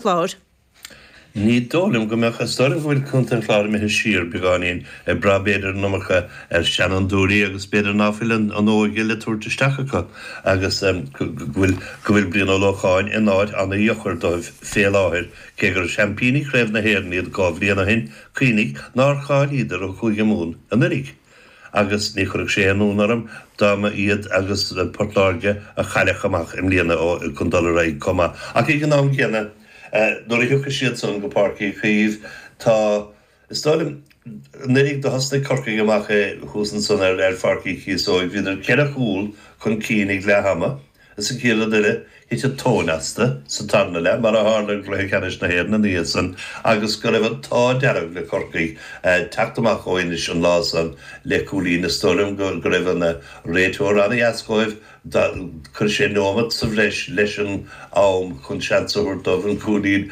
Chláir. Ní dóigh liom go mbeadh is dóigh liom go bhfuil Contae an Chláir imithe siar beagáinín, ag brath b'fhéidir an iomarca ar sheanfhondúirí agus b'fhéidir ná fuil an óige le tabhairt isteach acu agus go bhfuil Brian Ó Lócháin in áit ana-dheocair dóibh fé láthair, cé gur seaimpíní Craobh na hÉireann iad dhá bhliain ó shin, cuimhnigh nár cháilíodar ó Chúige Mumhan anuiridh. Agus ní chuirfeadh sé aon ionadh orm dá mba iad agus Port Láirge a chaillfeadh amach i mbliana chun dul ar aghaidh chomh maith. Ach ag an am gcéanna, nuair a thiocfaidh siadsan go Páirc Uí Chaoimh, tá, is dóigh liom, anuiridh, do thosnaigh Corcaigh amach thuas ansan ar Pháirc Uí Chíosóig, bhíodar ceithre chúl chun cinn ag leath ama, Is an chéad rud eile, thit an tóin astu sa tarna leath, mar a tharla i gcluiche ceannais na hÉireann ina dhiaidh san, agus go raibh an t-ádh dearg le Corcaigh teacht amach ó Inis an lá san le cúilín. Is dóigh liom go raibh an réiteoir an-dheas dhóibh. Chuir sé nóimeat sa bhreis leis an am chun seans a thabhairt dóibh an cúilín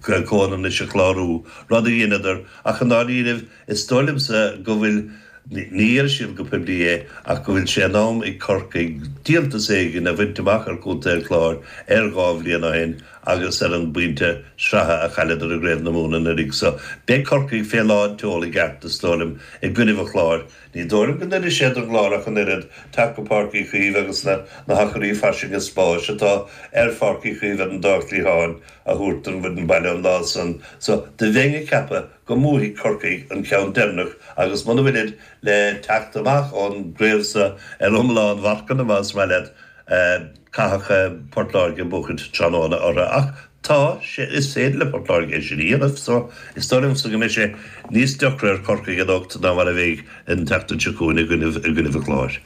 comhionannais a chlárú, rud a dheineadar, ach i ndáiríre, Is dóigh liomsa go bhfuil, ní déarfaidh siad go poiblí é, ach go bhfuil sé in am ag Corcaigh díoltas éigin a bhaint amach ar Chontae an Chláir ar dhá bhliain ó shin agus ar an bpointe sraithe a chailleadar i gCraobh na Mumhan anuraidh. So, beidh Corcaigh fé lán tseol i gceart, is dóigh liom, i gcoinnibh an Chláir. Ní dóigh liom go n-oirfidh sé don gClár ach an oiread teacht go Páirc Uí Chaoimh agus na hacraí fairsinge spáis atá ar Pháirc Uí Chaoimh ar an dá chliatháin a thabhairt don bhfoireann baile an lá san. So, do bheinn ag ceapadh. go mbuafaidh Corcaigh an ceann deireanach agus muna bhfuilid le teacht amach ón gcraobh sa ar iomlán mharcanna, más maith leat, caithfidh Port Láirge buachaint tráthnóna orthu. Ach tá, is féidir le Port Láirge é sin a dhéanamh so is dóigh liomsa go mbeidh sé níos deacra ar Chorcaigh anocht ná mar a bheidh an tseachtain seo chugainn i gcoinnibh an Chláir.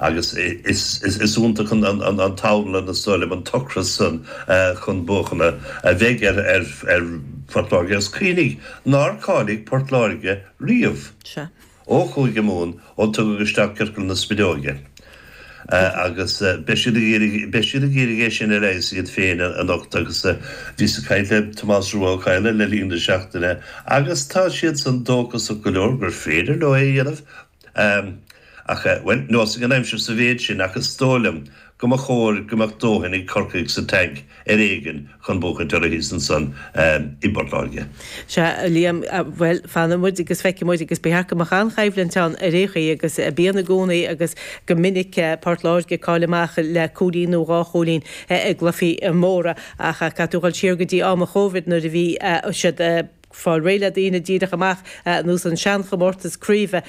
Agus is iontach an t-anlann, is dóigh liom, an t-ocras san chun buachana a bheidh ar Phort Láirge agus cuimhnigh nár cháiligh Port Láirge riamh ó Chúige Mumhan ó tugadh isteach ciorcal na spideoige agus beidh, beidh siad ag iarraidh é sin a leigheas iad féin anocht agus bhíos ag caint le Tomás Rua Ó Cadhla le linn na seachtaine agus tá siadsan dóchasach go leor gur féidir leo é a dhéanamh. Am, ach eh, bhuel, neosfaidh an aimsir sa mhéid sin ach is dóigh liom go mba chóir go mbeadh dóthain ag Corcaigh sa tank ar éigin chun buachaint orthu thíos ansan i bPort Láirge. Sea, a Liam, eh, bhuel, fanfaidh muid agus feicfidh muid agus ba cheart go mbeadh an-choimhlint ann ar aon chaoi agus bíonn i gcónaí agus go minic eh, Port Láirge ag cailleadh amach le cúilín nó dhá chúilín eh, i gcluichí móra ach eh, caithfidh tú dhul siar go dtí am an Chovid nuair a bhí eh, siad eh, fáil réidh le daoine díreach amach ar nós an seanchomórtas craoibhe.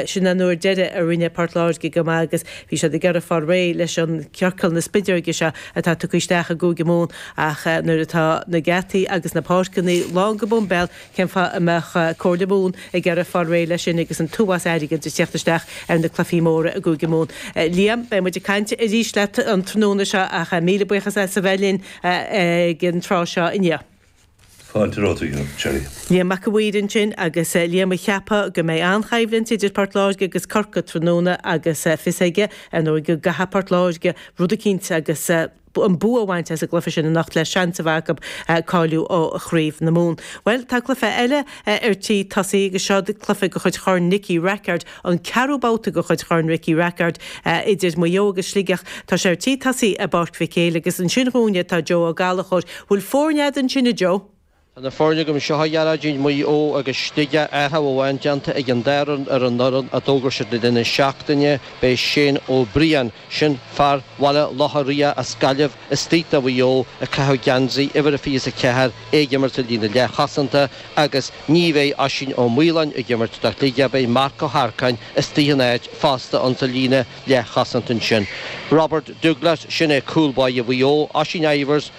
Sin an uair deiridh a rinne Port Láirge go maith agus bhí siad ag iarraidh fáil réidh leis an ciorcal na spideoige seo atá tugtha isteach i gCúige Mumhan ach nuair atá na geataí agus na páirceanna lán go boimbéal cén fáth a mbeadh Comhairle Mumhan ag iarraidh fáil réidh leis sin agus an t-uafás airgid ag teacht isteach ar na cluichí móra i gCúige Mumhan. Liam, beidh muid ag caint arís leat an tráthnóna seo ach míle buíochas as a bheith linn ag an tráth seo inniu. Fáilte romhat a Gerry. Liam Mac an Mhaoir ansin agus Liam ag ceapadh go mbeidh an-choimhlint idir Port Láirge agus Corcaigh tráthnóna agus fios aige ar ndóigh go gcaithfidh Port Láirge rud eicínt agus an bua a bhaint as an gcluiche sin anocht le seans a bheith acu cáiliú ó Chraobh na Mumhan. Bhuel tá cluiche eile ar tí tosaí agus seo cluiche de chuid Chorn Nicky Rackard. an ceathrú babhta de chuid Chorn Ricky Rackard idir Maigh Eo agus Sligeach. Tá sé ar tí tosaí i bPáirc Mhic Éil agus ansin dúinne atá Joe Ó Gallchóir. Bhfuil foirne agat ansin, a Joe? Tá na foirne agam anseo, a Ghearóidín, Maigh Eo agus Sligeach, athrú amháin déanta ag an dá fhoireann ar an fhoireann a d'fhógair siad le linn na seachtaine. Beidh Shane Ó Briain, Sin fear Bhaile Locha Riach as Gaillimh istigh do Mhaigh Eo ag caitheamh geansaí uimhir a 24, é ag imirt ar líne leathchosanta, agus ní bheidh Oisín Ó Maoláin ag imirt do Shligeach, beidh Marc Ó hEarcáin istigh ina áit fosta insa líne leathchosanta ansin. Robert Douglas, sin é cúl báire Mhaigh Eo, Oisín Ivers,